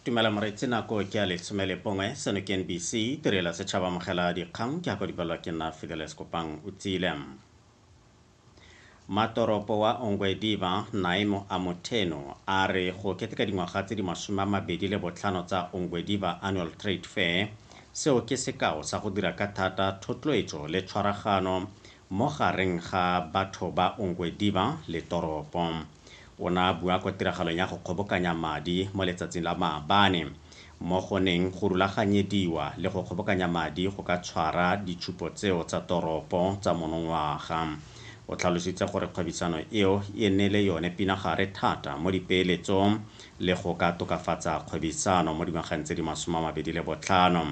tumela moreetsi nako ke a lesome le bongwe seno ke nbc tirela setšhaba amogela dikgang ke ako dipalelwa ke nna fideles kopang o tsile matoropo wa ongwediva naimo a motheno a re go keteka dingwaga tse di masome a mabedi le botlhano tsa ongwediva annual trade fair seo ke sekao sa go dira ka thata thotloetso le tshwaragano mo gareng ga batho ba ongwediva le toropo O ne a bua kwa tiragalong ya go kgobokanya madi mo letsatsing la maabane mo go neng go rulaganyediwa le go kgobokanya madi go ka tshwara ditshupo tseo tsa toropo tsa monongwaga. O tlhalositse gore kgwebisano eo e ne le yone pinagare thata mo dipeeletsong le go ka tokafatsa kgwebisano mo dingwageng tse di masome a mabedi le botlhano.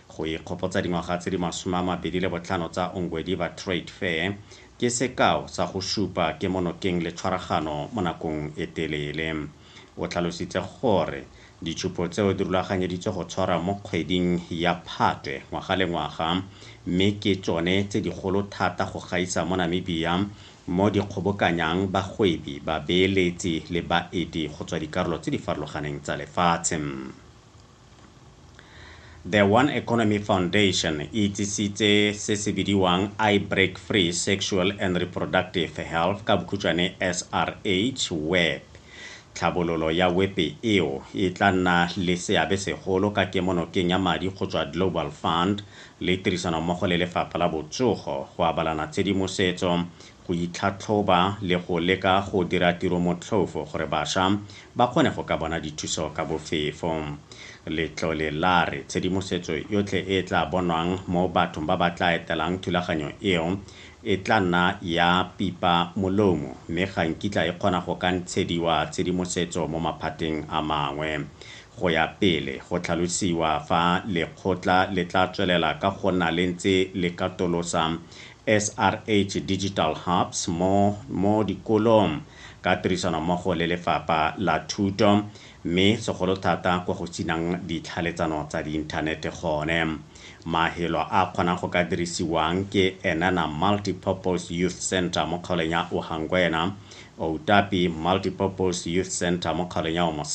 Go ikgopotsa dingwaga tse di masome a mabedi le botlhano tsa Ongwediva Trade Fair, Ke sekao sa go supa kemonokeng le tshwaragano mo nakong e telele. O tlhalositse gore ditshupo tseo di rulaganyeditswe go tshwarwa mo kgweding ya Phatwe ngwaga le ngwaga mme ke tsone tse digolo thata go gaisa mo Namibia mo di kgobokanyang bagwebi, babeeletsi le baeti go tswa dikarolo tse di farologaneng tsa lefatshe. The One Economy Foundation e itsisitse se se bidiwang I Break Free Sexual and Reproductive Health, ka bokhutšwane SRH, Web. Tlhabololo ya wepe eo e tla nna le seabe segolo ka kemonokeng ya madi go tswa Global Fund le tirisanommogo le Lefapha la Botsogo go abalana tshedimosetso go itlhatlhoba le go leka go dira tiro motlhofo gore basha ba kgone go ka bona dithuso ka bofefo. Letlole la re tshedimosetso yotlhe e e tla bonwang mo bathong ba ba tla etelang thulaganyo eo e tla nna ya pipa molomo mme ga nkitla e kgona go ka ntshediwa tshedimosetso mo maphateng a mangwe go ya pele go tlhalosiwa fa lekgotla le tla tswelela ka go nna le ntse le katolosa SRH Digital Hubs mo mo dikolong ka tirisanommogo le Lefapha la Thuto, mme segolo thata kwa go sinang ditlhaeletsano tsa diinthanete gone. Mafelo a a kgonang go ka dirisiwang ke Enana Multipurpose Youth Centre mo kgaolong ya Ohangwena, Outapi Multipurpose Youth Centre mo kgaolong ya Omosata,